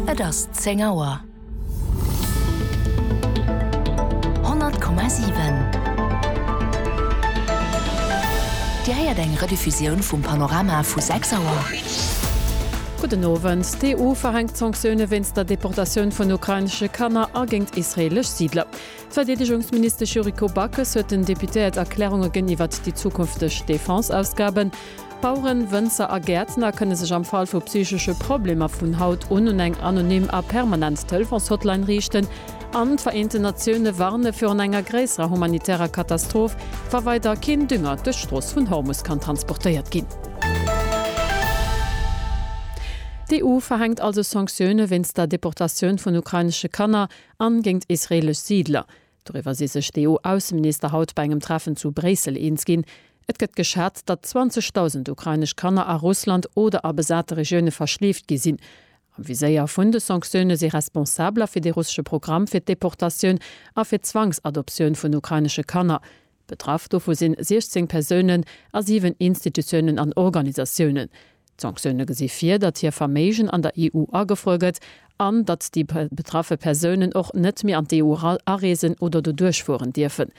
Et ass 10 Auer. 100,7 Dir héiert eng Rediffusioun vum Panorama vu 6 Auer. Gudden Owend. D'EU verhänkt Sanktioune wéinst der Deportatioun vun ukrainesche Kanner a géint israeelesch Siidler. D'Verdeedegungsministesch Yuriko Backes huet den Deputéiert Erklärunge gënn iwwert déi zukünfteg Defense-Ausgaben. Baueren, Wënzer a Gäertner kënne sech am Fall vu psychesche Problemer vun haut un un eng anonym a permanent Telefons-Hotline riichten an d'Vereenten Natioune warne virun enger gréisserer humanitärer Katastroph, wa weider keen Dünger duerch d'Strooss vun Hormus kann transportéiert ginn. D'EU verhänkt also Sanktioune wéinst der Deportatioun vun ukrainesche Kanner a géint israeelesch Siidler. Doriwwer si sech d'EU-Ausseminister haut bei engem Treffen zu Bréissel eens ginn. Et gëtt geschat, datt 20.000 ukrainesch Kanner a Russland oder a besate Regioune verschleeft gi sinn. Am Viséier vun de Sanktioune si Responsabler fir de russesche Programm fir d'Deportatioun a fir d'Zwangsadoptioun vun ukrainesche Kanner. Betraff dovu si 16 Persounen a 7 Institutiounen an Organisatiounen. D'Sanktioune gesi vir, datt hir Verméigen an der EU agefruer gëtt an datt déi betraffe Persounen och net méi an d'EU areesen oder do duerchfueren dierfen.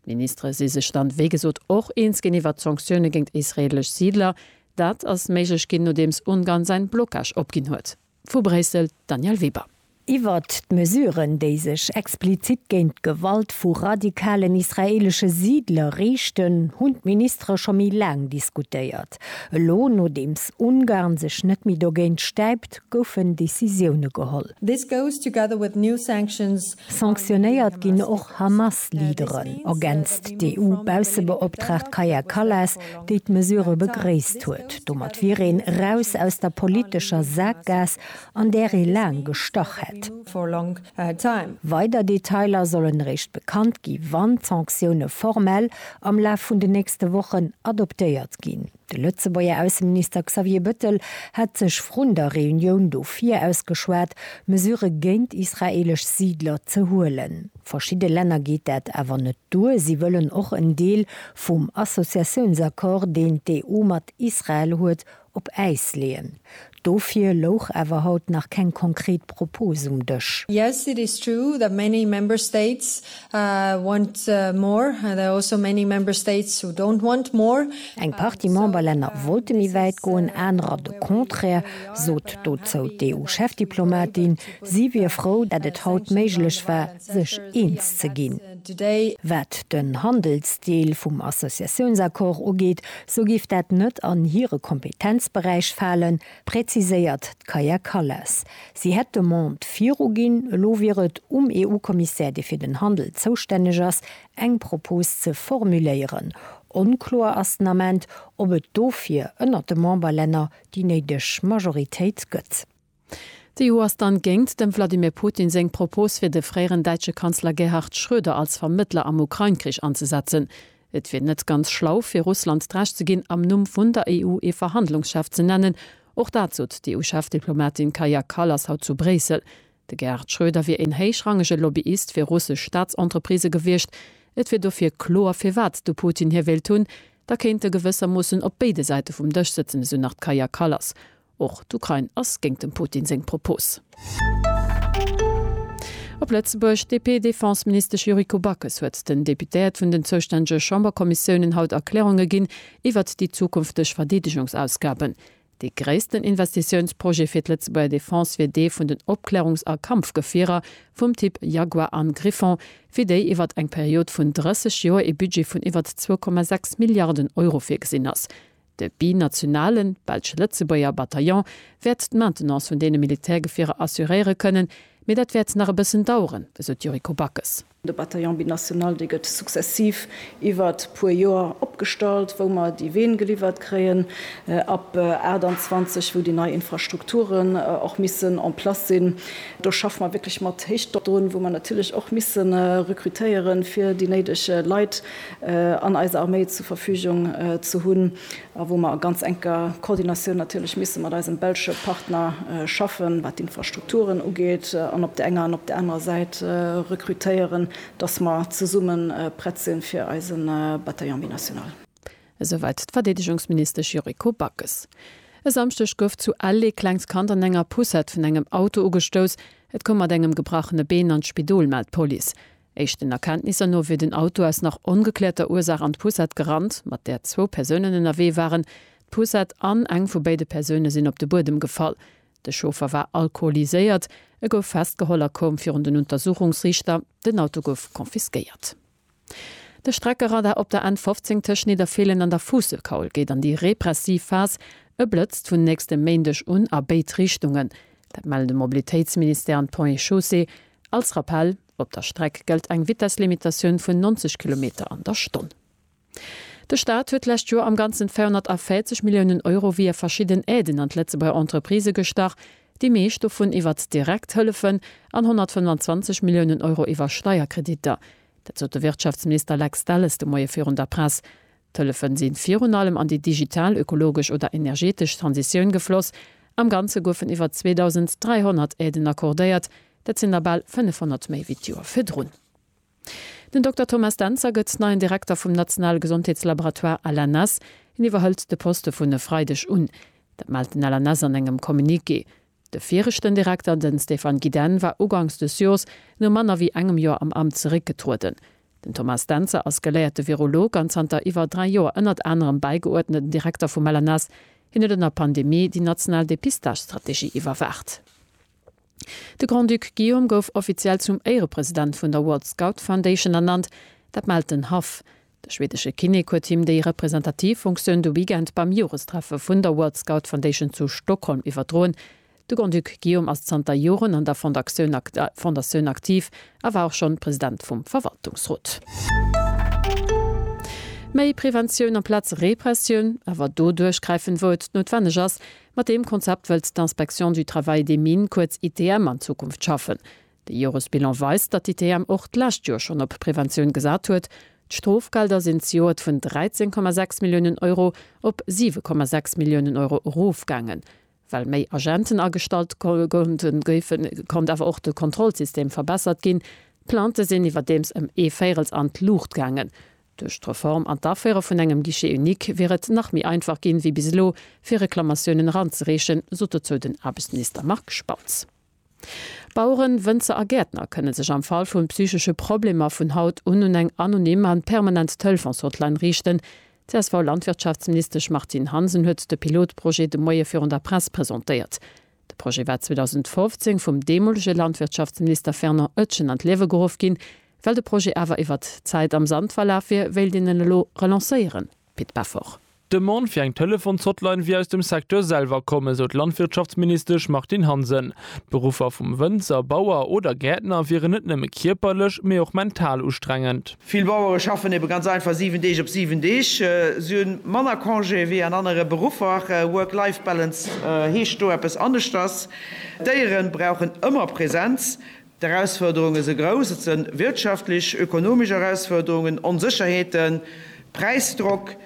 D'Ministere si sech dann, wéi gesot, och eens ginn iwwert d'Sanktioune géint israeelesch Siidler. Dat ass méiglech ginn, nodeems Ungarn säin Blocage opginn huet. Vu Bréissel, d'Danièle Weber. Iwwert d'Mesuren, déi sech explizit géint d'Gewalt vu radikalen israeelesche Siidler riichten, hunn d'Ministere scho méi laang diskutéiert. Elo, nodeems Ungarn sech net méi dogéint stäipt, goufen Decisioune geholl. This goes together with new sanctions Sanktionéiert ginn och Hamas-Leaderen, ergänzt d'EU-Baussebeoptraagt Kaja Kallas, déi d'Mesure begréisst huet. Domat wier een eraus aus der politescher Saakgaass, an där ee laang gestach hätt. Weider Detailer sollen eréischt bekannt gi wann d'Sanktioune formell am Laf vun den nächste Wochen adoptéiert ginn. De Lëtzebuerger Ausseminister Xavier Bëttel hat sech vrun der Reunioun do viraus geschwat, Mesurë géint israeelesch Siidler ze huelen. Verschidde Länner geet dat awer net duer. Si wëllen och en Deel vum Associatiounsaccord, deen d'EU mat Israel huet, op Äis leeën. Dofir louch awer haut nach keng konkret Propos um Dësch. Yes, it is true that many Member States want more. There are also many Member States who don't want more. Eng Partie Memberlänner wollte méi wäit goen, anerer de Contraire, sot dozou d'EU-Chefdiplomatin. Si wier frou, dat et haut méiglech war, sech eens ze ginn. Wat den Handelsdeel vum Associatiounsaccord ugeet, sou géif dat net an hire Kompetenzberäich falen, präziséiert d'Kaja Kallas. Si hätt d'Demande viruginn, elo wier et um EU-Kommissär, dee fir den Handel zoustänneg ass, eng Propos ze formuléieren. Onkloer ass den Ament, ob et dofir ënnert de Memberlänner déi néideg Majoritéit gëtt. D'EU ass dann géngt dem Wladimir Putin seng Propos fir de fréieren däitsche Kanzler Gerhard Schröder als Vermëttler am Ukrain-Krich anzesetzen. Et wier net ganz schlau fir Russland d'Recht ze ginn am Numm vun der EU ee Verhandlungschef ze nennen. Och dat sot d'EU-Chefdiplomatin Kaja Kallas haut zu Bréissel. De Gerhard Schröder wier een héichrangege Lobbyist fir russesch Staatsentreprisë gewiescht. Et wier dofir kloer firwat de Putin hie wéilt hunn. Da kéint e gewëssermoossen op béide Säite vum Dësch sëtzen, esou nach d'Kaja Kallas. Och d'Ukrain ass géingt dem Putin seng Propos. Op Lëtzebuerg, D'DP-Defense-Ministesch Yuriko Backes huet den Deputéiert vun den zoustännege Chamberkommissiounen haut Erklärunge ginn iwwert déi zukünfteg Verdeedegungsausgaben. Dee gréissten Investitiounsprojet fir d'Lëtzebuerger Defense wier dee vun den Opklärungs a Kampfgefierer vum Typ Jaguar an Griffon, fir déi iwwert eng Period vun 30 Joer ee Budget vun iwwert 2,6 Milliarden Euro virgesinn ass. De binationalen, Belsch-Lëtzebuerger, Bataillon wäert d'Maintenance vun deene Militärgefierer assuréiere kënnen, mee dat wäert nach e bëssen daueren, esou d'Yuriko Backes. De Bataillon binational, dee gëtt successiv iwwert puer Joer opgestallt, wou mer déi Ween geliwwert kréien, ab 28, wou déi nei Infrastrukturen och missen en place sinn. Do schaffe mer wierklech mat Héichdrock drun, wou mer natierlech och misse rekrutéieren, fir déi néideg Leit an eis Arméi zur Verfügung ze hunn a wou mer a ganz enker Koordinatioun natierlech misse mat eisem belsche Partner schaffen, wat d'Infrastrukturen ugeet an op der enger an op der anerer Säit rekrutéieren, dass mer zesumme prett sinn, fir eise Bataillon binational. Esouwäit d'Verdeedegungsministesch Yuriko Backes. E Samschdeg gouf zu Ell ee klengt Kand an enger Poussette vun engem Auto ugestouss. Et koum mat engem gebrachene Been an d'Spidol, mellt d'Police. Éischten Erkenntnisser no wier den Auto aus nach ongekläerter Ursaach an d'Poussette gerannt, mat där zwou Persounen ënnerwee waren. D'Poussette an eng vu béide Persoune sinn op de Buedem gefall. De Chauffer war alkoholiséiert. E gouf festgeholl a koum virun den Untersuchungsriichter. Den Auto gouf confisquéiert. De Streckeradar op der N 15 tëscht Nidderfeelen an der Fuusselkaul geet an déi repressiv Phas. E blëtzt vun nächstem Méindeg un a béid Richtungen. Dat mellen de Mobilitéitsministère an d'Ponts et Chaussées. Als Rappell. Op der Streck gëllt eng Vitesslimitatioun vun 90 Kilometer an der Stonn. De Staat huet d'lescht Joer am Ganzen 240 Milliounen Euro via verschidden Aiden an d'Lëtzebuerger Entreprisë gestach, déi meescht dovun iwwert direkt Hëllefen an 125 Milliounen Euro iwwer Steierkreditter. Dat sot de Wirtschaftsminister Lex Delles de Moie virun der Press. D'Hëllefen sinn virun allem an déi digital, ökologesch oder energetesch Transitioun gefloss. Am Ganze goufen iwwer 2.300 Aiden accordéiert, dat sinn der bal 500 méi wéi d'Joer virdrun. Den Dokter Thomas Dentzer gëtt neien Direkter vum nationale Gesondheetslaboratoire LNS. Hien iwwerhëlt de Poste vun e Freideg un. Dat mellt den LNS an engem Communiqué. De viregten Direkter, den Stéphane Gidenne, war ugangs des Jors no manner wéi engem Jor am Amt zeréckgetrueden. Den Thomas Dentzer ass geléierte Virolog an zanter iwwer 3 Jor ënnert anerem bäigeuerdneten Direkter vum LNS. Hien huet an der Pandemie déi national Depistagestrategie iwwerwaacht. De Grand-Duc Guillaume gouf offiziell zum Éirepresident vun der World Scout Foundation ernannt. Dat mellt den Haff. De schwedesche Kinnek huet him déi representativ Funktioun de Weekend beim Jorestreffe vun der World Scout Foundation zu Stockholm iwwerdroen. De Grand-Duc Guillaume ass zanter Joren an der Fondatioun aktiv a war och schonn President vum Verwaltungsrot. Méi Preventioun amplaz Repressioun, awer do duerchgräifen, wou et noutwenneg ass. Mat deem Konzept wëllt d'Inspection du Travail des Mines, kuerz ITM, an Zukunft schaffen. De Joresbilan weist, datt d'ITM och d'lescht Joer schonn op Preventioun gesat huet. D'Strofgelder sinn zejoert vun 13,6 Milliounen Euro op 7,6 Milliounen Euro erofgaangen, well méi Agenten agestallt goufen. Et konnt awer och de Kontrollsystem verbessert ginn. D'Plaintë sinn iwwerdeems ëm ee Véirels an d'Luucht gaangen. Duerch d'Reform an d'Aféiere vun engem Guichet unique wier et nach méi einfach ginn, wéi bis elo, fir Reklamatiounen eranzereechen, sot dozou den Aarbechtsminister Marc Spautz. Baueren, Wënzer a Gäertner kënne sech am Fall vun psychesche Problemer vun haut un un eng anonym an permanent Telefons-Hotline riichten. D'CSV-Landwirtschaftsministesch Martine Hansen huet de Pilotprojet de Moie virun der Press presentéiert. De Projet war 2015 vum deemolege Landwirtschaftsminister Fernand Oetjen an d'Liewe geruff ginn. Well de Projet awer iwwert d'Zäit am Sand verlaf wier, wéilt een en elo relancéieren, Pit Peffer. D'Demande fir eng Telefons-Hotline wier aus dem Secteur selwer komm, esou d'Landwirtschaftsministesch Martine Hansen. D'Beruffer vum Wënzer, Bauer oder Gäertner wieren net nëmme kierperlech, mee och mental ustrengend. Vill Bauere schaffen ebe ganz einfach 7 Deeg op 7 Deeg. Si hu manner Congé wéi an anere Beruffer. Work-Life-Balance heescht do eppes aneschters. D'Déiere brauchen ëmmer Presenz. D'Erausfuerderunge se grouss. Et se wirtschaftlech, ökonomesch Erausfuerderungen, Onsécherheeten, Präisdrock,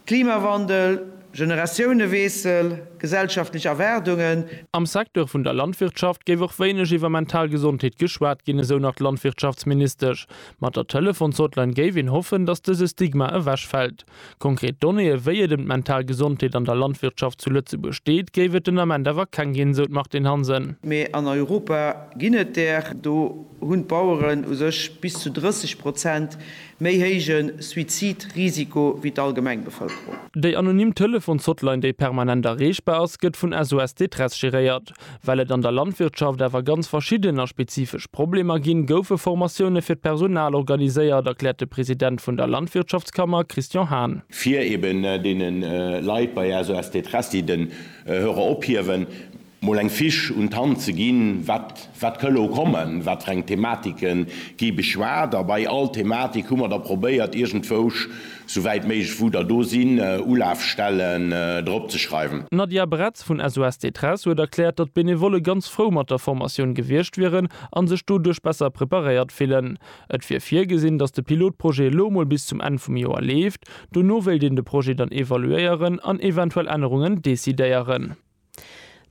Klimawandel, Generatiouneweessel, gesellschaftlech Erwaardungen. Am Secteur vun der Landwirtschaft géif och wéineg iwwer mental Gesondheet geschwat ginn, esou nach d'Landwirtschaftsministesch. Mat der Telefons-Hotline géif een hoffen, datt dëse Stigma ewechfält. Konkret Donnéeë wéi et ëm d'mental Gesondheet an der Landwirtschaft zu Lëtzebuerg steet, géif et den Ament awer keng ginn, sou d'Martine Hansen. Mee an Europa ginn et där. Do hunn d'Baueren u sech bis zu 30 Prozent méi héije Suizidrisiko wéi d'allgemeng Bevëlkerung. Déi anonym Telefons-Hotline, déi permanent erreechbar ass, gëtt vun SOS Détresse geréiert. Well et an der Landwirtschaft awer ganz verschidden a spezifesch Problemer ginn, goufe Formatioune fir d'Personal organiséiert, erkläert de President vun der Landwirtschaftskammer Christian Hahn. fir eben deene Leit bei SOS Détresse, déi den Hörer ophiewen, mol eng Fiche un d'Hand ze ginn, wat wat ka elo kommen, wat fir eng Thematike gi beschwat. A bei all Thematik hu mer da probéiert iergendwousch Souwäit méiglech wou der do sinn, Ulafstellen drop ze schreiwen. D'Nadia Bretz vun SOS Détresse huet erkläert, datt d'Benevolle ganz frou mat der Formatioun gewiescht wieren a sech doduerch besser preparéiert fillen. Et wier virgesinn, datt de Pilotprojet elo mol bis zum Enn vum Joer leeft. Dono wéilt een de Projet dann evaluéieren an eventuell Ännerungen decidéieren.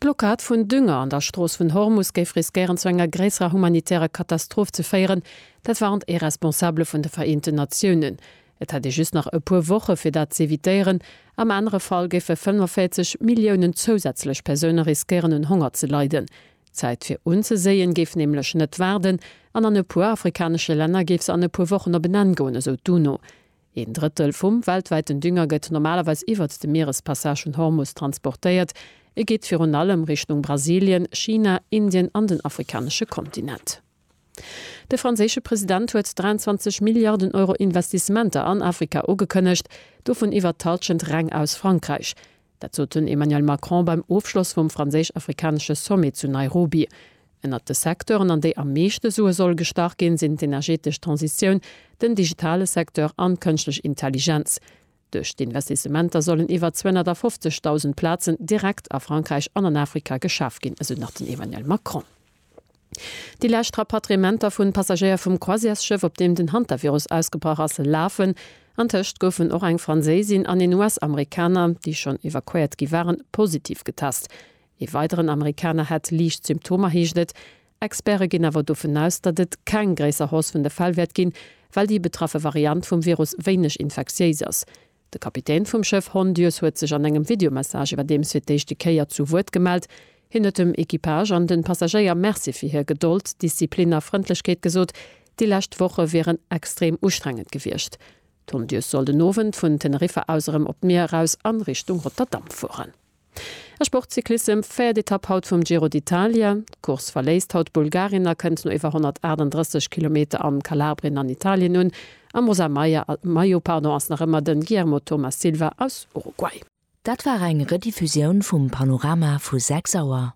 D'Blockad vun Dünger an der Strooss vun Hormus géif riskéieren zu enger gréisserer humanitärer Katastroph ze féieren, dat warnt ee Responsabele vun de Vereenten Natiounen. Et hätt ee just nach e puer Woche fir dat z'evitéieren, am anere Fall géife 45 Milliounen zousätzlech Persoune riskéieren un Honger ze leiden. D'Zäit fir unzeséien géif nämlech net waarden an an e puer afrikanesche Länner géif se an e puer Wochen op en Enn goen, esou d'UNO. Een Drëttel vum weltwäiten Dünger gëtt normalerweis iwwert de Mierespassage vun Hormus transportéiert. E geet virun allem Richtung Brasilien, China, Indien an den afrikanesche Kontinent. De franséische President huet 23 Milliarden Euro Investissementer an Afrika ugekënnegt, dovun iwwert d'Hallschent reng aus Frankräich. Dat sot den Emmanuel Macron beim Ofschloss vum franséisch-afrikanesche Sommet zu Nairobi. Ënnert de Secteuren, an déi am meeschte Sue soll gestach ginn, sinn d'energetesch Transitioun, den digitale Secteur an d'Kënschtlech Intelligenz. Duerch d'Investissementer sollen iwwer 250.000 Plazen direkt a Frankräich an an Afrika geschaf ginn, esou nach den Emmanuel Macron. Déi lescht Rapatriementer vun Passagéier vum Croisièresschëff, op deem den Hantavirus ausgebrach ass, lafen. Antëscht goufen och eng Franséisin an een US-Amerikaner, déi schonn evakuéiert gi waren, positiv getest. Ee weideren Amerikaner hätt liicht Symptomer, heescht et. Experte ginn awer dovun aus, datt et keng gréisser Hausse vun de Fäll wäert ginn, well déi betraffe Variant vum Virus wéineg infektiéis ass. De Kapitän vum Schëff Hondius huet sech an engem Videomessage iwwerdeems fir d'éischte Kéier zu Wuert gemellt. Hien huet dem Equipage an de Passagéier Merci fir hir Gedold, Disziplin a Frëndlechkeet gesot. Déi lescht Woche wieren extrem ustrengend gewiescht. D'Hondius soll den Owend vun Teneriffa aus erëm op d'Mier eraus an Richtung Rotterdam fueren. A Sportcyclissem, véiert Etapp haut vum Giro d'Italia. D'Course verléisst haut d'Bulgarin a kënnt no iwwer 138 Kilometer am Kalabrien an Italien un. Am rosa Maillot ass nach ëmmer den Guillermo Thomas Silva aus Uruguay. Dat war eng Rediffusioun vum Panorama vu 6 Auer.